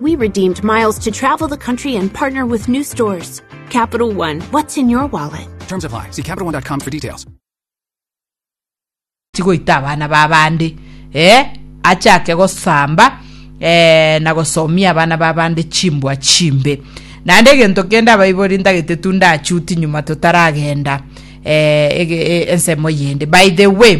We redeemed miles to travel the country and partner with new stores. Capital One, what's in your wallet? Terms apply. See CapitalOne.com for details. tigoita abana ba bande eh, achake gosamba eh, na gosomia abana ba bande chimbwa chimbe. Naende egento kende abaibori ntagete tu ndachuti nyuma totaragenda. eh, ege- eh, ensemo eyende by the way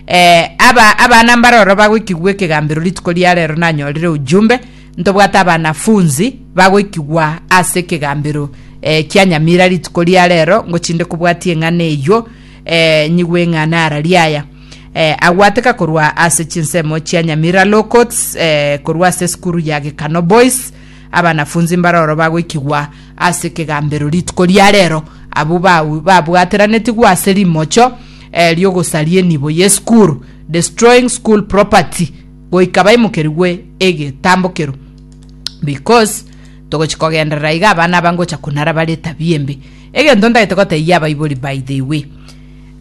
eh, aba abana mbaroro bagoikigwa ekegambero rituko ria rero nanyorire ujumbe ntobwate abanafunzi bagoikigwa ase ekegambero eh, kia nyamira rituko ria rero ngochinde kobwatia eng'ana eywo eh, nyigwe eng'ana ara riaya eh, agwateka korwa ase chinsemo chia nyamira locots eh, korwa ase esukuru ya gekano boys Abanafunsi mbaroro bagoikigwa ase kegambero rituko ria rero, abwo ba- babwateranetigwe ase rimocho eh, ri'ogosaria enibo ye skuru, destroying school property, goika baimokerigwe egetambokero because togochi kogenderera iga abana aba ngocha kunara bare etabia embe egento ntagete gotebia abaibori by the way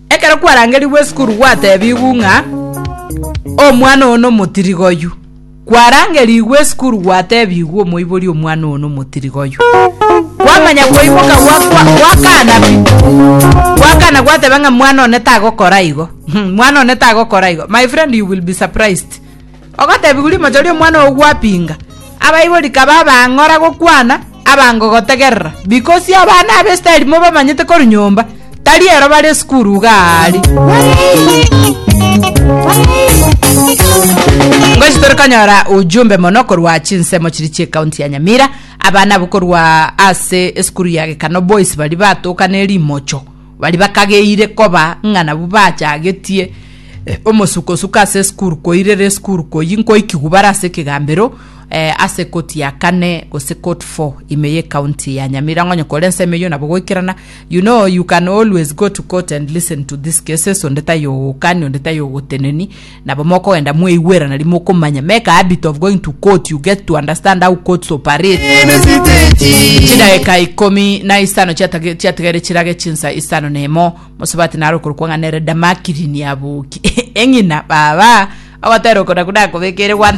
ekero kwarangerigwe esukuru gwatebigwu ng'a omwana oyo nomotirigoyu Kwarangerigwe esukuru gwatebigwe omoibori omwana oyo nomotiriga oyo. Kwamanya koimoka gwakwa gwakana pi. Gwakana gwateba ng'a mwana one tagokora igo. Hmm, mwana one tagokora igo. My friend you will be surprised. Ogotebigwa rimochoria omwana oyo gwapinga. Abaibori kaba abang'ora gokwana Abango gotegerera, bikosia abana ab'Isiraeli mobamanyete korwa nyomba, tari ero bare esukuru iga aari. Ngochi tore konyora ujumbe mono korwa chinsemo chiria chi'ekaunti ya Nyamira. Abana abwo korwa ase esukuru ya Gekano Boys baria batoka ne rimocho. Baria bakageire koba ng'a nabwo bachagetie omosukosuko ase esukuru koirera esukuru koyia nkoikigwa bare ase ekegambero ase ekoti ya kane gose court four ime ye county ya Nyamirango onye kore ensemo eyio nabo goikerana you know you can always go to court and listen to this cases onde taiyo ogokani onde taiyo ogoteneni Nabo mokogenda mwaigwerana riria mokomanya, make a habit of going to court, you get to understand how courts operate. Chidageka ikomi na isano chiatage chiatigaire chirage chinsa isano na imo, mosubati naro okorokwa ng'a nere Damakiri niaboki. Eng'ina, Baba, ogotera okonaku nakobekeire gwante.